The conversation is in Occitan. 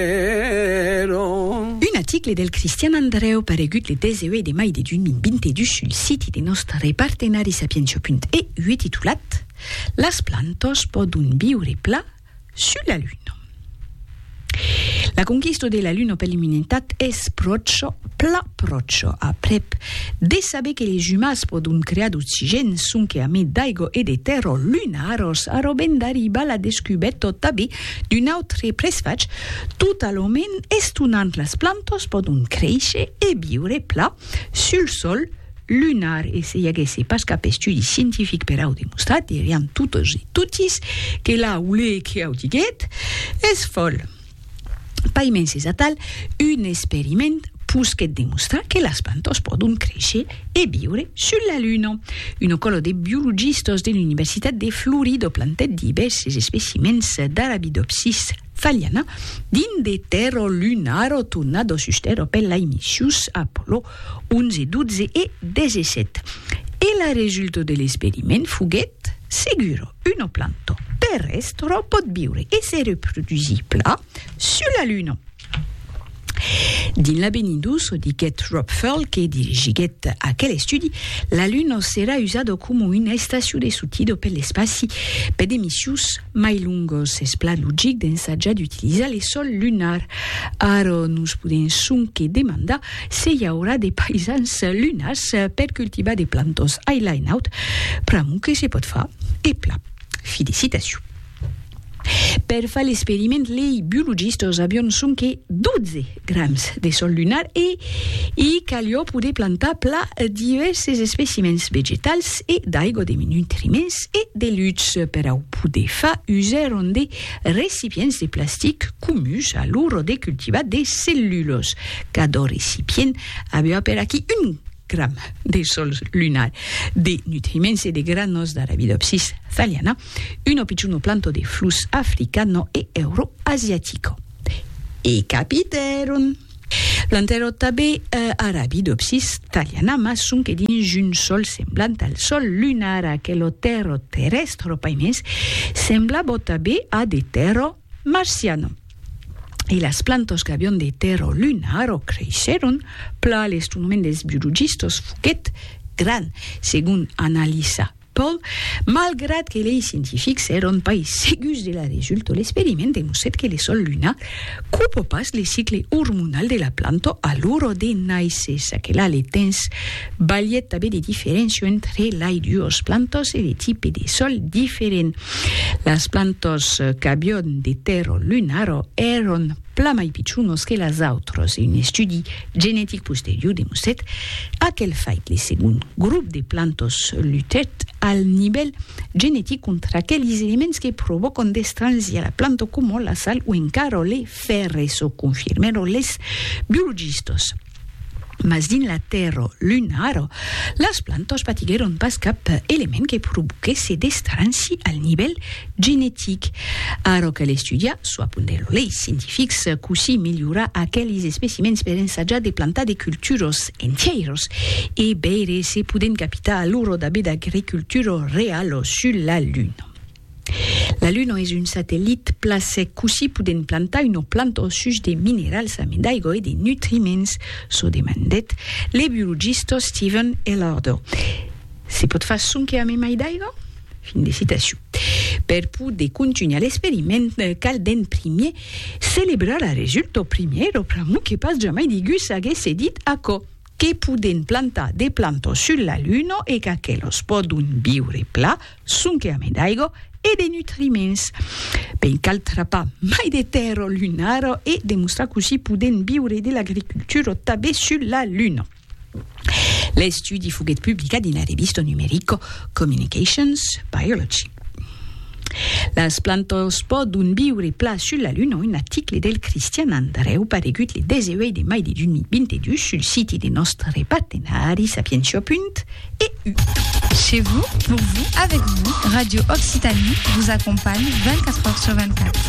Ero. Un aticle del Cristian Andrèu paregut le 18 de mai de 2022 sul siti de nòstre partenari Sapientia.eu titulat Las plantas pòdon viure pla sus la luna. La conquista de la luna per l'umanitat es pròcha, pla pròcha, aprèp de saber que les umans pòdon crear d'oxigèn sonque a mai d'aigua e de tèrra lunara, s'arrobèn d'arribar la descubèrta tanben D'un autre presfach, totalament estonant las plantas pòdon créisher e viure pla sul sòl lunar e se i aguèsse pas cap estudi scientific per au demostrar dirián totes e totis que la olé que au diguèt es fòl. Paimens es atal un experiment pus qu'eth demostrar que las plantas pòdon créisher e viure sus la Luna. Un còlo de biologistas de l'Universitat de Florida plantèt divèrses especimèns d'Arabidopsis thaliana dins de tèrra lunara tornada sus tèrra per lai missius Apollo 11, 12 e 17, e la resulta de l'experiment foguèt segura, una planta terrèstra pòt viure e se reprodusir plan sus la Luna. Dins l'avenir d'uso, diguèt Rob Furl, que dirigiguèt aquel estudi, la Luna serà usada coma una estacion de sortida per l'espaci per de missius mai longos. Es plan logic d'ensajar d'utilizar le sol lunar. Ara nos podèm sonque demandar se i aurà de paisans lunars per cultivar de plantas ailaenaut, pr'amor que se pòt far e plan. Fi de citacion. Per far l'experiment, lei biologistas avion sonque 12 grams de sòl lunar e i calió poder plantar pla divèrses especimèns vegetals e d'aigua de nutriments e de lutz. Per au poder far, usèron de recipients de plastic comuns a l'ora de cultivar de cellulas. Cada recipient aviá per aquí un gram de sol lunar de nutriments e de granos d'Arabidopsis thaliana, uno picciuno planto de flus africano e euroasiatico. E capitèron! Plantèron tanben Arabidopsis thaliana, mas sonque dins un sòl semblant al sòl lunar, aquelo tèrro terrèstro paimens semblabò tanben a de tèrro Marciano. E las plantas qu'avion de tèrra o luna arrò creishèron, plan l'estonament dels biologistas foguèt gran, segon analisa Paul, malgrat que lei scientifics èron pas segurs de la resulta, l'experiment demostrèt que le sòl lunar copa pas le cicle ormonal de la planta a l'ora de nàisser, ça que la le temps balhèt tanben de diferéncia entre lai duas plantas e de tipe de sòl diferent. Las plantors qu'avion de tèrro lunaro èron plan mai pichonos que las autras e un estudi genetic posterior demostrèt aquel fait. Le segond grop de plantors lutèt al nivèl genetic contra aqueles elements que provòcan d'estranhir la planta coma la sal o encara le fèrre, çò confirmèron les biologistas. Mas dins la tèrra lunara, las plantas patiguèron pas cap element que provoquèsse d'estranci al nivèl genetic. Ara cal estudiar, çò apondèt lo lei scientific, cossí melhorar aqueles especimèns per ensajar de plantar de culturas entièras e veire se podèm capitar alura d'abé d'agricultura reala sus la Luna. La Luna es un satellit pla sec, cossí podèm plantar una planta au such de minerals amé d'aigua e de nutriments? çò demandèt le biologista Steven Ellardo. Se pòt far sonque amé mai d'aiga? Fin de citacion. Per poder contunhar l'experiment, cal d'en primier celebrar la resulta, primièr o pr'amor que pas jamai digú s'aguèsse dit aquò. Que podèn plantar de plantas sus la Luna e qu'aquelas pòdon viure pla, sonque ame d'aiga e de nutriments. Ben cal trapar mai de tèrra lunara e demostrar cossí podèn viure de l'agricultura tabé sus la Luna. L'estudi foguèt publicat dins la revista numerica Communications Biology. Las plantas pòdon viure plan sul la Luna, un article del Cristian Andrèu paregut le 18 de mai de 2022 sul siti de nòstre partenari Sapientia. EU. Chez vous, pour vous, avec vous, Radio Occitanie vous accompagne 24 heures sur 24.